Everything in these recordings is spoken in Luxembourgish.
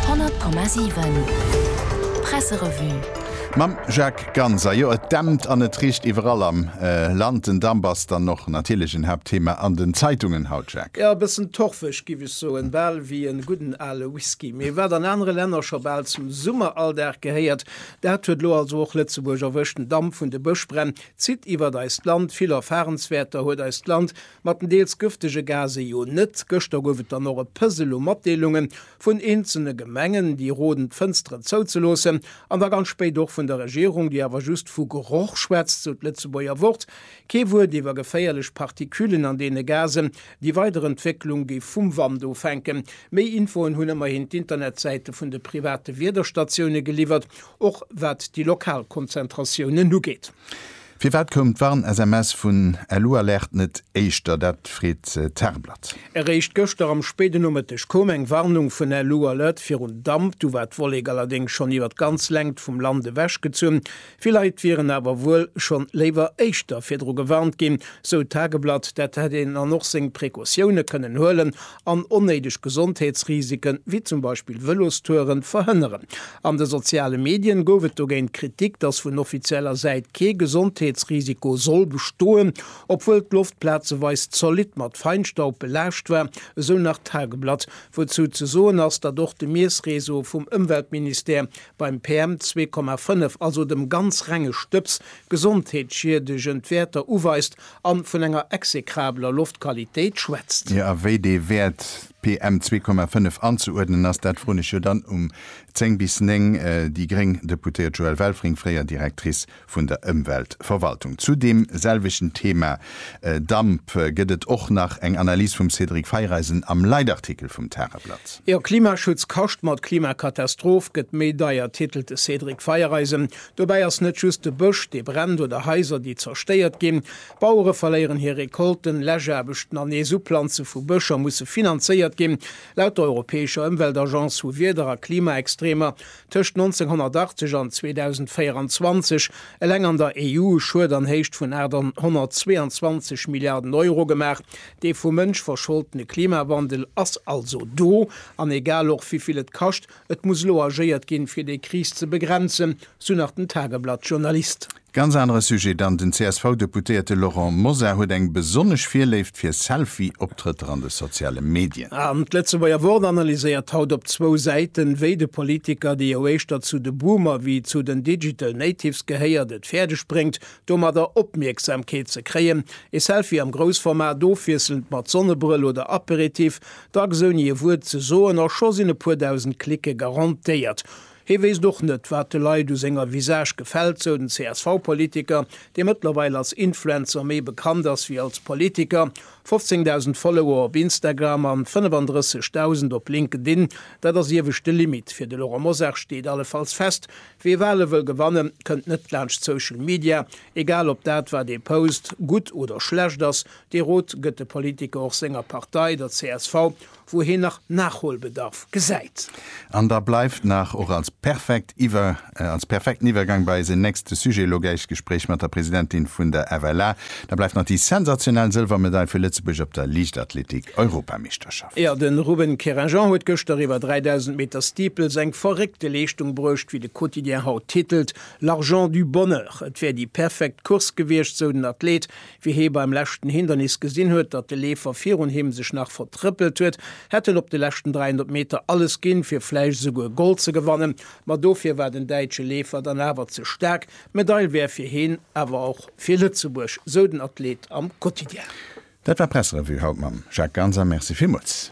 100,7 Presserevue. Mam Jacques Ganz, a jo et dämpt an et richt iwwerall am Land. Den Damp ass dann och natierlech en Haaptthema an den Zeitungen haut, Jacques. Jo, e bëssen torfeg giff ech soen, bal wéi en gudden ale Whisky. Mee wat an anere Länner scho bal zum Summeralldag gehéiert, dat huet lo also och Lëtzebuerg erwëscht. Den Damp vun de Bëschbränn zitt iwwert eist Land, vill Erfarenswäerter huet eist Land mat den deels gëftege Gase jo net. Gëschter gouf et dann och e Pësel u Matdeelunge vun eenzelne Gemengen, déi roden, d'Fënsteren zouzeloossen, an da ganz spéit och vun der Regierung, déi awer just vu Geroch schwätzt, sou d'Lëtzebuerger Wort, kee Wuert iwwer geféierlech Particulen an deene Gasen. Déi weider Entwécklung géif vum Wand ofhänke. Méi Infoen hunn ëmmerhin d'Internetsäite vun de private Wiederstatioune geliwwert, och wat déi lokal Konzentratiounen ugeet. Firwat koum d'Warn-SMS vun Elualert net éischter? Dat freet d'Tageblatt. Eréischt gëschter am spéiden Nomëtteg koum eng Warnung vun Elualert virun Damp. Du war d'Wollek allerdéngs schonn iwwer d'ganz Längt vum Land ewech gezunn. Vill Leit wieren awer wuel schonn léiwer éischter virdru gewarnt ginn, sou d'Tageblatt. Dat hätt een dann och seng Precautioune kënnen huelen an onnéideg Gesondheetsrisiken, wéi zum Beispill Vëlostouren, verhënneren. An de soziale Medien gouf et dogéint Kritik, datt vun offizieller Säit kee Gesondheetsrisiko soll bestoen, obwuel d'Loft plazeweis zolidd mat Feinstaub belaascht war, esou nach d'Tageblatt, wouzou ze soen ass, datt och de Miessreseau vum Ëmweltministère beim PM 2,5, also dem ganz renge Stëbs, gesondheetsschiedegend Wäerter uweist A vun enger execrabeler Loftqualitéit schwätzt. Jo, a wéi dee Wäert PM 2,5 anzeuerdnen ass, dat froen ech jo dann um 10 bis 9 déi gréng Deputéiert Joëlle Welfring, fréier Directrice vun der Ëmweltverwaltung. Zu deem selwechten Thema Damp gëtt et och nach eng Analys vum Cédric Feiereisen am Leitartikel vum Tageblatt. Jo, Klimaschutz kascht mat Klimakatastroph gëtt méi deier, titelt de Cédric Feiereisen. Dobäi ass net just de Bësch, dee brennt oder Haiser, déi zerstéiert ginn. Bauere verléieren hir Recolten, Läschaarbechten an nees Uplanze vu Bëscher musse finanzéiert ginn. Laut der europäescher Ëmweltagence hu Wieder a Klimaextremer tëscht 1980 an 2024 eleng an der EU e Schued an Héicht vun 822 Milliarden Euro gemaach. Dee vum Mënsch verscholdene Klimawandel ass also do, an egal och wéi vill et kascht, Et muss elo agéiert ginn, fir déi Kris ze begrenzen, sou nach den Tageblatt-Journalist. Ganz anere Sujet dann, Den CSV-Deputéierte Laurent Mosar huet eng besonnesch Virléift fir Selfie-Optrëtter an de soziale Medien. An d'Lëtzebuerger Wort analyséiert haut op zwou Säiten, wéi de Politiker, dee jo éischter zu de Boomer wéi zu den Digital Natives gehéiert, et fäerdeg bréngt, domadder Opmierksamkeet ze kréien. Ee Selfie am Groussformat, ofwiesselnd mat Sonnebrëll oder Aperitif, Dacks ouni e Wuert ze soen a scho sinn e puer dausend Cliquë garantéiert. Hee wéisst och net, wat de Leit u senger Visage gefält, sou den CSV-Politiker, dee mëttlerweil als Influencer méi bekannt ass wéi als Politiker. 15.000 Follower op Instagram an 35.000 op LinkedIn, dat ass ieweg de Limit fir de Laurent Mosar, steet allefalls fest. Wee Wale wëll gewanne kënnt net laanscht Social Media, egal ob dat wat ee post gutt oder schlecht ass, Dee Rot gëtt de Politiker och senger Partei, der csv, wou hien nach Nachholbedarf gesäit. An da bleift nach, och als perfekt Iwwer, als perfekten Iwwergang bei eisen nächste Sujet, elo gläich d'Gespréich mat der Presidentin vun der FLA, da bleift nach déi sensationell Sëlwermedail fir Lëtzebuerg op der Liichtathletik-Europameeschterschaft. Jo, de Ruben Querinjean huet gëschter iwwer 3.000 Meter Steeples eng verréckte Leeschtung bruecht, wéi de Quotidien haut titelt, L'argent du bonheur. Et wär déi perfekt Course gewiescht, sou den Athlet, Wéi hie beim leschten Hindernis gesinn huet, datt de Leefer virun him sech nach vertrëppelt huet, hätt en op de leschten 300 Meter alles ginn, fir vläicht esouguer Gold ze gewannen. Ma dofir war den däitsche Leefer dann awer ze staark. D'Medail wär fir hien, awer och fir Lëtzebuerg, sou den Athleet am Quotidien. Dat war d'Pressrevue haut mam Jacques Ganser. Merci villmools.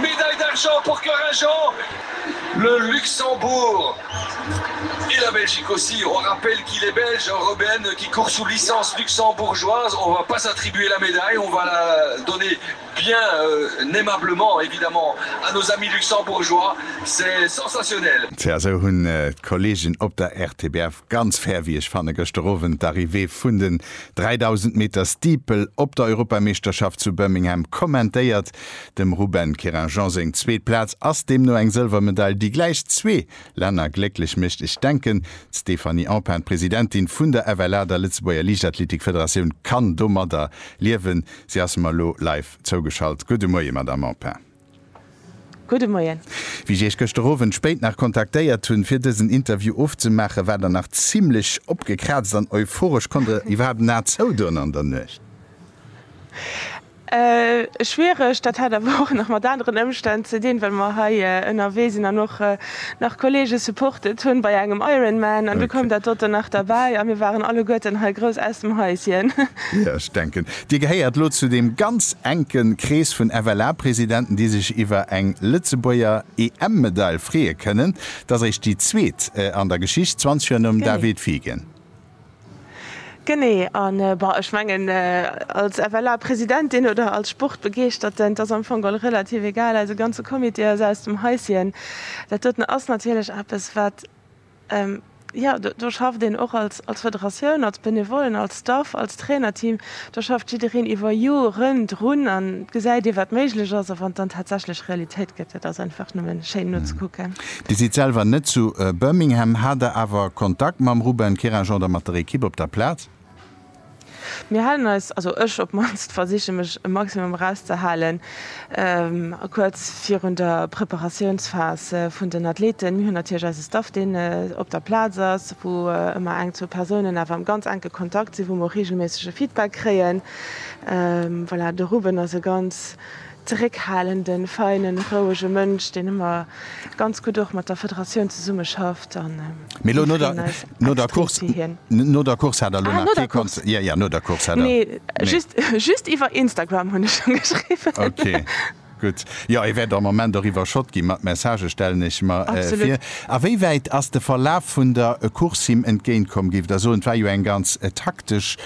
Médaille d'argent pour Corin Jean, le Luxembourg et la Belgique aussi, on rappelle qu'il est belge en Rebène qui court sous licence luxembourgeoise, on va pas attribuer la médaille, on va la donner bien aimablement évidemment à nos amis luxembourgeois, c'est sensationnel. Tja, esou hunn d'Kolleegen op der RTBF ganz fair, wéi ech fannen, gëschter Owend d'Arrivée vun den 3000 Meter Steeple op der Europameeschterschaft zu Birmingham kommentéiert. Dem Ruben Querinjean seng zweet Plaz ass deemno eng Sëlwermedail, déi gläich zwee Länner glécklech mécht. Ech denken, d'Stéphanie Empain, d'Presidentin vun der FLA, der Lëtzebuerger Liichtathletikfederatioun, kann domadder liewen. Si ass mer elo live zougeschalt. Gudde Moie, Madamm Empain. Gudde Moien. Wéi ech Iech gëschter Owend spéit nach kontaktéiert hunn, fir dësen Interview ofzemaachen, waart Der nach zimmlech opgekraazt an euphoresch. Konnt Der iwwerhaapt en A zoudoen an der Nuecht? Schwiereg, dat hat awer och nach mat aneren Ëmstänn ze dinn, well mer hei ënnerwee sinn an och nach Kolleege supportet hunn bei engem Ironman an du koum dat doten nach derbäi a mir waren alleguerten hei grouss aus dem Häuschen. Jo, ech denken, Dir gehéiert elo zu deem ganz enke Krees vun FLA-Presidenten, déi sech iwwer eng Lëtzebuerger EM-Medail freeë kënnen. T'ass eréischt déi zweet an der Geschicht, 20 Joer nom David Figen. Genee, a bon, ech mengen, als FLA-Presidentin oder als Sportbegeeschterten, 't ass am Fong och relativ egal, eise ganze Comité ass aus dem Häuschen. Dat doten ass natierlech eppes, wat, jo, do schafft een och als Federatioun, als Benevollen, als Staff, als Trainerteam. Da schafft jiddereen iwwer Joren drun an gesäit ee wat méiglech ass. A wann dann tatsächlech Realitéit gëtt, dat ass einfach nëmme schéin nozekucken. Dir sidd selwer net zu Birmingham. Hat der awer Kontakt mam Ruben Keragen oder mat der Ekipp op der Plaz? Mir halen eis, also ech op d'mannst, versiche mech e Maximum erauszehalen. Kuerz virun der Preparatiounsphas vun den Athleten, mir hunn natierlech eise Staff, deen op der Plaz ass, wou ëmmer eng, zwou Persounen awer am ganz enke Kontakt sinn, wou mer och reegelméissege Feedback kréien. Voilà, de Ruben ass e ganz zeréckhalenden, feinen, rouege Mënsch, deen ëmmer ganz gutt och mat der Federatioun zesummeschafft an mat freeën eis. No der Course no der Course hat der elo nach kee Concert? Jo, jo, no der Course hat der. Nee, just just iwwer Instagram hunn ech scho geschriwwen. Ok, gutt. Jo, e wäert am Moment och iwwerschott gi mat Messagë, stellen ech mer vir. A wéi wäit ass de Verlaf vun der Course him entgéint komm? Géift Der soen, et war jo eng ganz taktesch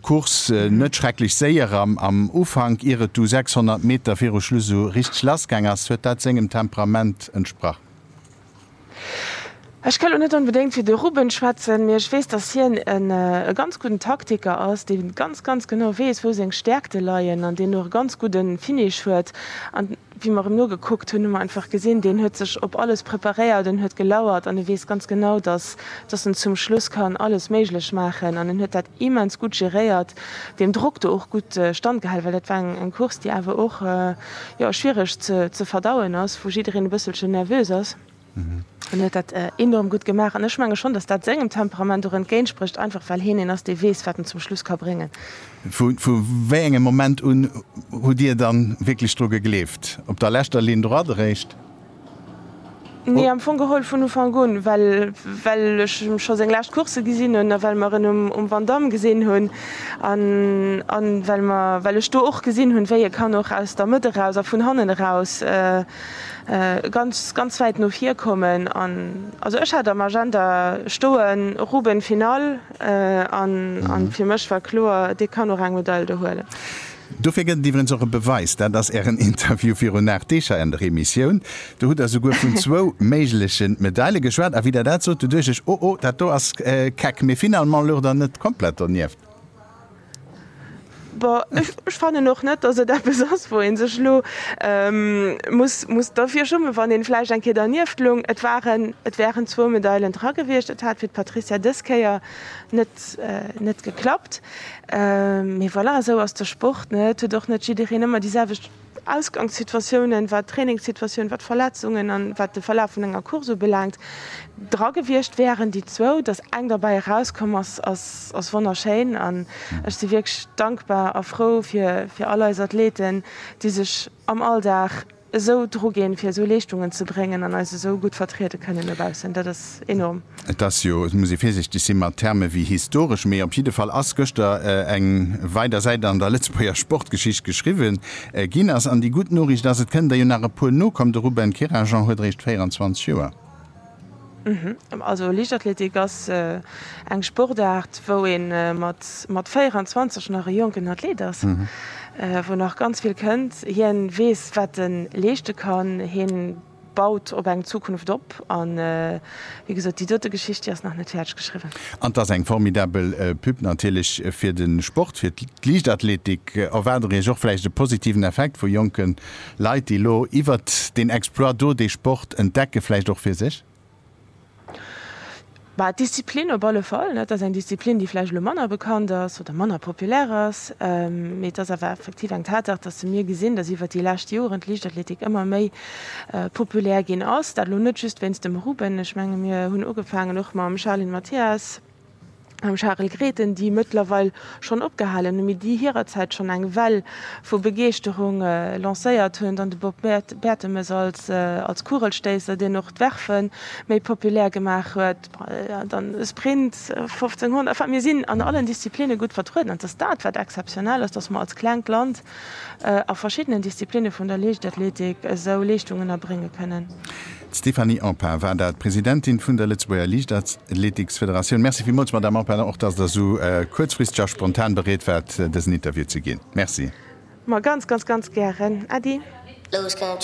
Course, net schrecklech séier am Ufank, ier et du 600 Meter viru Schluss esou richteg lassgaang ass? Huet dat sengem Temperament entsprach? Ech ka lo net onbedéngt fir de Ruben schwätzen, mee ech weess, datt hien e ganz gudden Taktiker ass, dee ganz, ganz genau weess, wou seng Stäerkte leien an deen och e ganz gudde Finish huet. An wéi mer em nogekuckt hunn, hu mer einfach gesinn, deen huet sech op alles preparéiert an huet gelauert an e weess ganz genau, datt datt en zum Schluss kann alles méiglech maachen an en huet dat immens gutt geréiert, deem Drock do och gutt standgehalen, well dat war eng Course, déi awer och, jo, schwiereg ze verdauen ass, wou jiddereen e bësselchen nervös ass, an huet dat enorm gutt gemaach. An ech menge schonn, dass dat sengem Temperament och entgéintsprécht, einfach well heen een ass, dee weess, wat en zum Schluss ka bréngen. Vu wéi engem Moment un hutt Dir dann wierklech dru gegleeft? Op der leschter Ligne droite eréischt? Nee, am Fong geholl vun Ufank un, well well ech scho seng lescht Coursse gesinn hunn a well mer en um Vandamme gesinn hunn an an well mer well ech do och gesinn hunn, wéi e kann och aus der Mëtt eraus a vun hannen eraus ganz ganz wäit no vir kommen. An also ech hat am Agenda stoen Roubaix Finale an an fir mech war kloer, dee kann och eng Medail do huelen. Dofir gëtt et iwwrens och e Beweis, dat ass Ären Interview virun 8 Deeg hei an der Emissioun. Do hutt Der esouguer vun zwou méigleche Medaile geschwat. A wéi Der dat sot, do duecht ech, oh oh, dat do ass keck. Mee finalement lucht Der net komplett donieft. Bon, ech fannen och net, datt et eppes ass, wou ee sech elo muss derfir schummen, wann ee vläicht eng Kéier dernieft loung. Et waren, et wären zwou Medailen dra gewiescht. Et hat fir d'Patrizia dës Kéier net geklappt. Mee voilà, esou ass de Sport, ne? Et huet och net jiddereen ëmmer déi selwecht Ausgangssituatiounen, wat d'Trainingssituatioun, wat d'Verletzungen an wat de Verlaf vun enger Course ubelaangt, dra gewiescht wäeren. Déi zwou, datt eng derbäi erauskomm ass, ass wonnerschéin an ech si wierklech dankbar a frou fir all eis Athleten, déi sech am Alldag, esou dru ginn, fir esou Leeschtungen ze bréngen an eis esou gutt vertriede kënnen no baussen. Dat ass enorm. Et ass jo, et muss ee virsichteg si mat Terme wéi historesch, mee op jidde Fall ass gëschter eng weider Säit an der Lëtzebuerger Sportgeschicht geschriwwen ginn ass. An déi gutt Noriicht ass, et kënnen der jo nach e puer nokomm. De Ruben Kerajan huet eréischt 24 Joer. Also Liichtathletik ass eng Sportaart, wou ee mat 24 nach e jonken Athlet ass, wou nach ganz vill kënnt. Hien weess, wat e leeschte kann, hien baut op eng Zukunft op. An wéi gesot, déi dote Geschicht, déi ass nach net fäerdeg geschriwwen. An 't ass eng formidabel Pub natierlech fir de Sport, fir d'Liichtathletik. Erwaart Der Iech och vläicht e positiven Effekt vu jonken Leit, déi elo iwwert deen Exploit do dee Sport entdecken, vläicht och fir sech? Bah, d'Disziplin op alle Fall. Et ass eng Disziplin, déi vläicht elo manner bekannt ass oder manner populär ass. Mee et ass awer effektiv eng Tatsaach, dass se mir gesinn, dass iwwert déi lescht Joren d'Liichtathletik ëmmer méi populär ginn ass. Dat elo net just wéinst dem Ruben. Ech menge mir hunn ugefaangen och mam Charline Mathias. mam Charel Grethen, déi mëttlerweil schonn opgehalen hunn, mee déi hirerzäit schonn eng Well vu Begeeschterung lancéiert hunn, dann de Bob Bertemes als Kugelstéisser, deen och d'Werfen méi populär gemaach huet, dann e Sprint 1500, enfin mir sinn an allen Disziplinne gutt vertrueden an et ass dat wat exzeptionell ass, datt mer als klengt Land a verschiddenen Disziplinne vun der Liichtathletik esou Leeschtungen erbrénge kënnen. D'Stéphanie Empain war dat, Presidentin vun der Lëtzebuerger Liichtathleetiksfederatioun. Merci villmools, Madamm Empain, och datt Der esou kuerzfristeg a spontan bereet waart, dësen Interview ze ginn. Merci. Ma ganz, ganz, ganz gären, Äddi.